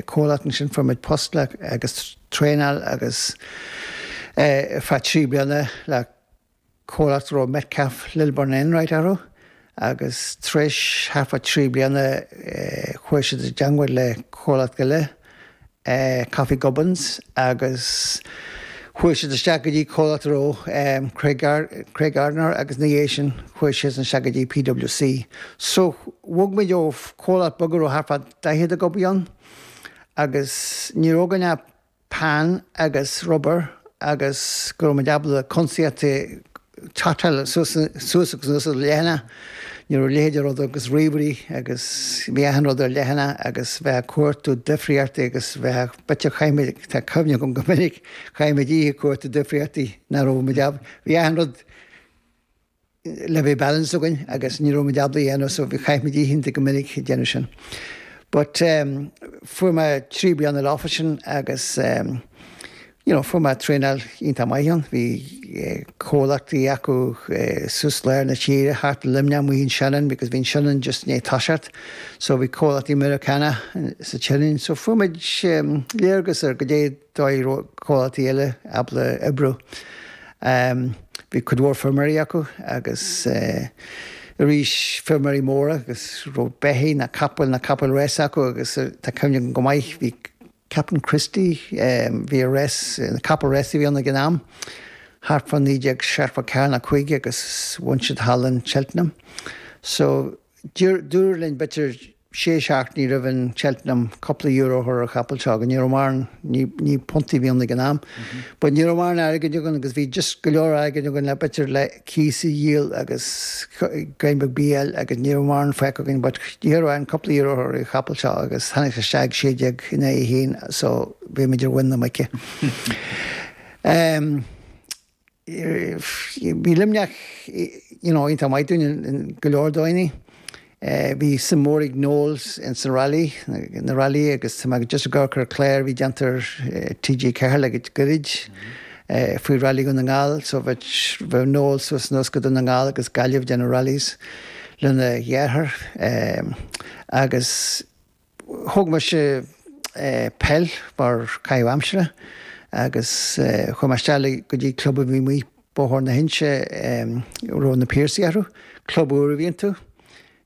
Comhlacht ansin fuair muid posta agus traenáil ar feadh trí bliana le comhlacht a raibh Metcalfe, Lilburn and Enright orthu agus tar éis thart fá trí bliana chuaigh siad i dteangmháil le comhlacht eile, Coffey Gubbins, agus chuaigh siad isteach go dtí comhlacht a raibh Craig, Craig Gardner agus ina dhiaidh sin chuaigh siadsan isteach go dtí PWC. So bhog muid ó chomhlacht beag a raibh thart fá daichead ag obair ann agus ní raibh againn ach peann agus rubar agus go raibh muid ábalta cuntasaíocht totáil suas agus anuas ar leathanaigh. Ní raibh leithéid de rud agus ríomhairí agus bhí achan rud ar leathanaigh agus bheith ag cuartú difríochtaí agus bheith ag bit a chaithfeadh muid, tá cuimhne agam go minic chaithfeadh muid oíche ag cuartú difríochtaí nach raibh muid ábalta, bhí achan rud le bheith balanced againn agus ní raibh muid ábalta é a dhéanamh so bhí chaith muid oícheanta go minic ag déanamh sin. But ehm fuair mé trí bliana ina leithéid sin agus ehm you know fuair mé traenáil iontach maith ann. Bhí eh comhlachtaí acu eh suas lár na tíre thart ar Luimneach amuigh in Shannon because bhí an Shannon just i ndiaidh toiseacht so bhí comhlachtaí Meiriceánach sa tSionainn so fuair muid ehm léargas ar caidé an dóigh a raibh comhlachtaí eile ábalta oibriú. Bhí cuid mhór feirmeoirí acu agus arís feirmeoirí móra agus raibh beithígh nó capaill nó capaill rása acu agus tá cuimhne agam go maith bhí Captain Christy, bhí a rás, capall rása a bhí ann ag an am, thart fá 1974 nó 5 agus bhain sé thall in Cheltenham. So. Dúradh linn b'fhéidir sé seachtainí roimh an Cheltenham cúpla euro a chur ar an chapall seo, agus ní raibh maran, ní punt a bhí ann ag an am, but ní raibh mórán airgid againn agus bhí just go leor airgid againn le b'fhéidir le cíos a dhíol agus greim beag bídh a fháil agus ní raibh mórán fágtha againn but d'éirigh linn cúpla euro a chur ar an chapall seo agus tháinig sé isteach ag sé déag in aghaidh a haon so bhí muid ar mhuin na muice. Bhí Luimneach iontach maith dúinne i go leor dóigheanna. Bhí suim mhór ag Noel insan railí, na railíthe agus tá mé just ag amharc ar an clár a bhí déanta ar TG4 le goirid faoi Railí Dhún na nGall so bheadh Noel suas is anuas go Dún na nGall agus Gaillimh ag déanamh rallies lena dheartháir agus Thóg mise peil mar caitheamh aimsire agus chuaigh mé isteach go dtí club a bhí amuigh Bóthar na hInse a raibh na Piarsaigh orthu. Club úr a bhí iontu.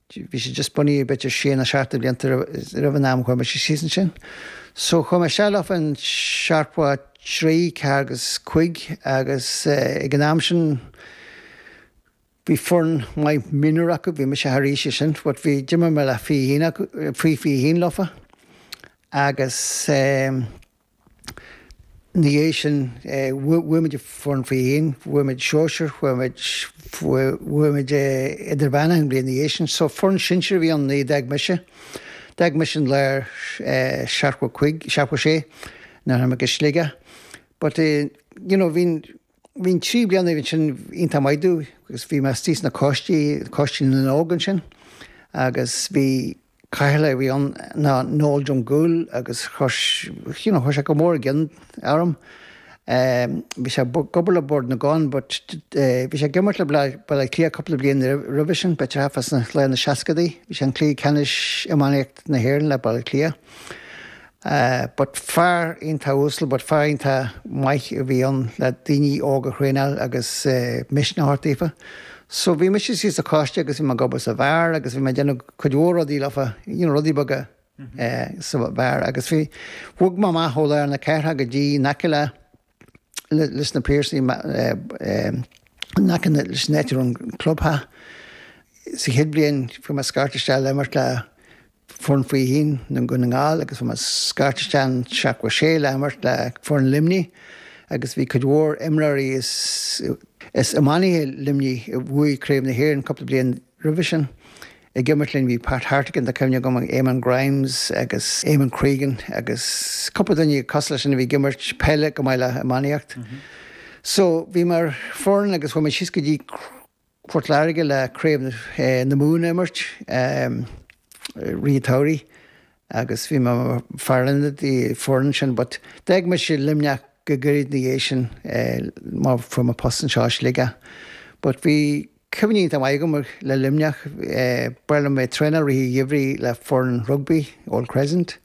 Bhí sé just bunaithe b'fhéidir sé nó seacht de bhlianta roimh an am a chuaigh mise síos ansin. So chuaigh mé isteach leo fán seachtó a trí, ceathair agus cúig agus ag an am sin, Bhí foireann maith mionúr acu, bhí mise thar aois sin but bhí, d'imir mé le fichín acu, faoi fiche haon leofa agus eh ina dhiaidh sin eh bhuaigh muid an foireann faoi fiche haon, bhuaigh muid sóisir, bhuaigh muid, bhuaigh muid eh idirmheánach an bhliain ina dhiaidh sin so foireann sinsir a bhí ann nuair a d'fhág mise, d'fhág mise an lár eh seachtó cúig, seachtó sé nuair a tháinig mé go Sligeach but eh you know bhí an, Bhí na trí bliana ansin iontach maith domh agus bhí mé istigh sna coistí, Coiste na nÓg ansin agus bhí Cathaoirleach a bhí ann ná Noel Drumgoole agus chuir, you know, chuir sé go mór i gcion orm. Bhí sé ag obair le Bord na gCon but bhí sé ag imirt le Baile Átha Cliath cúpla bliain roimhe sin, better half as in laetha na seascadaí. Bhí sé i gcluiche ceannais iománaíocht na hÉireann le Baile Átha Cliath. But fear iontach uasal, but fear iontach maith a bhí ann le daoine óga a thraenáil agus misneach a thabhairt daofa. So bhí mise istigh sa choiste agus bhí mé ag obair sa bheár agus bhí mé ag déanamh cuid mhór rudaí leofa, you know, rudaí beaga sa bheár. Agus bhí, bhog mé amach ó lár na cathrach go dtí in aice le leis na Piarsaigh in aice leis an áit a raibh an clubtheach. Sa chéad bhliain fuair mé scairt isteach le imirt le foireann faoi fiche haon Dhún na nGall agus fuair mé scairt isteach in seachtó a sé le imirt le foireann Luimnigh agus bhí cuid mhór imreoirí is iománaithe Luimnigh a bhuaigh Craobh na hÉireann cúpla bliain Roimhe sin, ag imirt linn, bhí Pat Hartigan, tá cuimhne agam, Eamonn Grimes agus Eamonn Cregan agus cúpla duine cosúil leis sin a bhí ag imirt peile chomh maith le iománaíocht. So, bhí muid mar foireann agus chuaigh muid síos go dtí Port Láirge le craobh na Mumhan a imirt, rith an tsamhraidh agus bhí mé mar fear ionaid don foireann sin but d'fhág mise Luimneach go gairid ina dhiaidh sin mar fuair mé post anseo i Sligeach. But bhí. Cuimhní iontach maith agam le Luimneach, ba ghnách liom bheith ag traenáil i rith an gheimhridh le foireann rugbaí, Old Crescent.